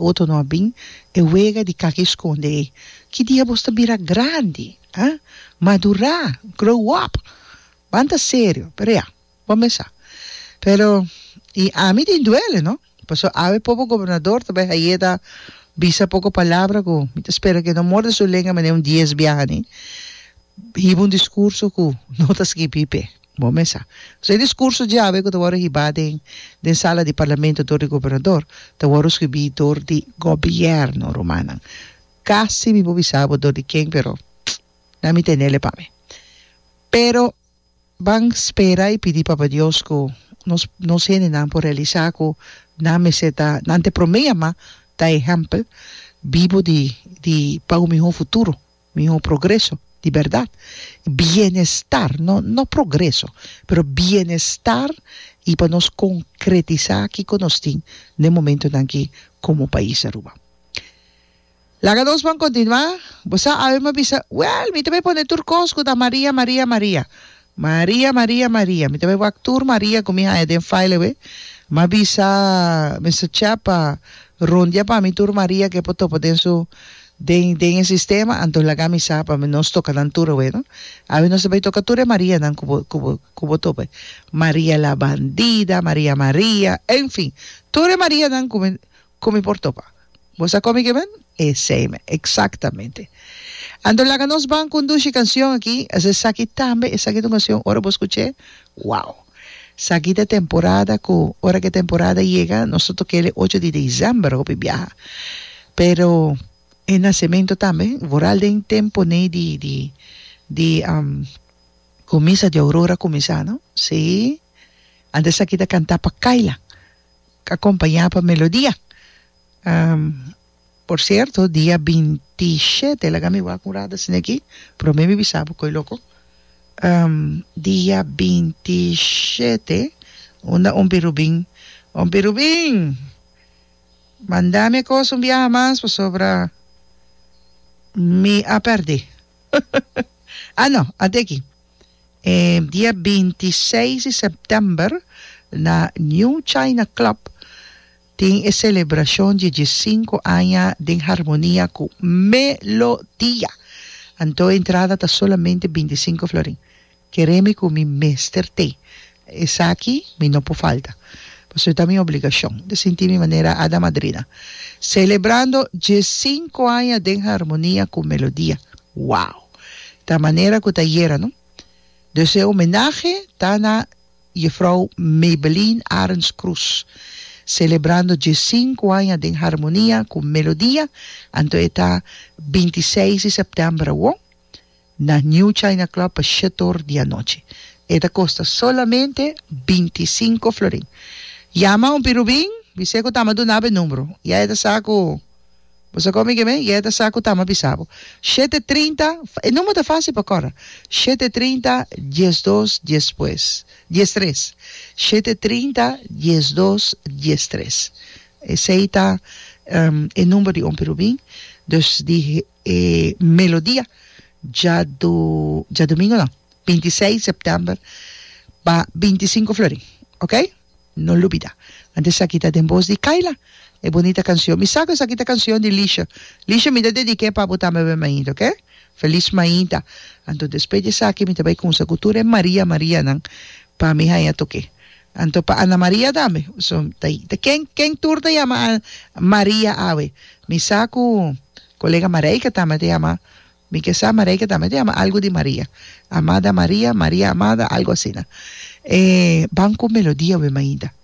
Oto no a bin e wega di kaki eskonde ei. Ki dia bos ta bira grandi, ha? Madurá, grow up! Ban ta serio, pero ya, bo a mesá. Pero, i ami tin duele, no? Paso awe pobo gobernador ta bai hayeta bisa poko palabra ku mi ta spera ku e no morde su lenga manera un dies biaha ni hiba un diskurso ku no ta skibí p'e. Bo mes sa. So e discurso djawe cu ta wòrdu hibá den den sala di Parlamento dor di Gobernador ta wòrdu scribí dor di Gobierno, rumannan. Casi mi por bisa bo dor di ken pero na mi tenele pa mi. Pero ban spera i pidi Papa Dios cu nos nos hendenan por realisa cu nan mester ta nan te prome yamá ta ehempel bibo di di pa un mihó futuro. Miho progreso di berdad i bienestar, no no progreso, pero bienestar i pa nos konkretisá kiko nos tin den momentunan aki komo pais Aruba. Laga nos bon kontinuá. Bo sa, Alma bisa, Wèl, mi ta bay pone tur kos ku ta Maria, Maria, Maria. Maria Maria Maria mi ta bai wak tur Maria ku mi haña den fail awe ma bisa Mister Chap pa rondia pa mi tur Maria ke por topa den su den den e sistema anto laga mi sa pa nos toka nan tur awe no awe nos ta bai toka tur e Marianan ku bo ku bo ku bo topa Maria la bandida Maria Maria en fin tur e Marianan ku mi Cu mi por topa. Bo sa con mi ke ben? Esey me. Exactamente. Anto laga nos ban conduci cancion aki, a ser saki tambe esaki ta un cancion ora bo scuche, wow! Saki ta temporada cu ora ke temporada yega nos ta tokel e ocho di december hopi biaha. Pero e nacemento tambe vooral den tempo ne di di di cu misa di aurora cuminsa no. Sí. Antes saki ta canta pa Kayla. Acompaña pa melodia. Por cierto dia binti shete laga mi wak un rat asina aki prome mi bisa bo koe loco dia binti shete unda ompi Rubin ompi Rubin manda mi a cosa un biaha mas pasobra mi a perde ano anti aki. E dia binti seis di sèptèmber na New China Club tin e selebrashon di e diesinku aña den harmonia ku Melodia. Anto entrada ta solamente bintisinku florin. Keré mi ku mi mester t'e Esaki mi no por falta, pasobra ta mi obligashon. Mi ta sinti mi manera ada madrina. Selebrando dje sinku aña den harmonia ku Melodia. Wow! Ta manera ku ta yera, no? Dus e homenahe ta na Jefrou Maybelline Arends Croes. Selebrando dje sinku aña den harmonia ku Melodia, anto e ta binti seis di sèptèmber awor. Na New China Club pa shetor di anochi. E ta kosta solamente binti sinku florin. Yama un pirubin, bis'é ku ta ama duna'bo e numbro. Ya e ta sa ku bo sa komi kem'é, ya e ta sa ku ta ama bisa bo. Shete trinta, e numbro ta fásil pa kòrda, shete trinta, dies dos, dies tres. Dies tres, shete trinta, dies dos, dies tres. Esei ta e numbro di un pirubin. Dus di E melodia dja do djadomingo nan, binti i seis sèptèmber, pa binti i sinku florin, ok? No lubidá. Ant esaki ta den bos di Kayla, e bonita kansion. Mi sa ku esaki ta kansion di Lisha. Lisha, mi ta dedik'é pa bo tambe awor mainta, ok? Felis mainta. Anto despues di esaki mi ta bai kumsa ku tur e Maria Marianan pa mi haña tok'é. Anto pa Ana Maria tambe. So ta ta ken ken tur ta yama a Maria awe? Mi sa ku kolega Marijke tambe ta yama mi ke sa Marijke tambe ta yama algu di Maria. Amada Maria, Maria amada algu asina. E ban ku melodia we mainta.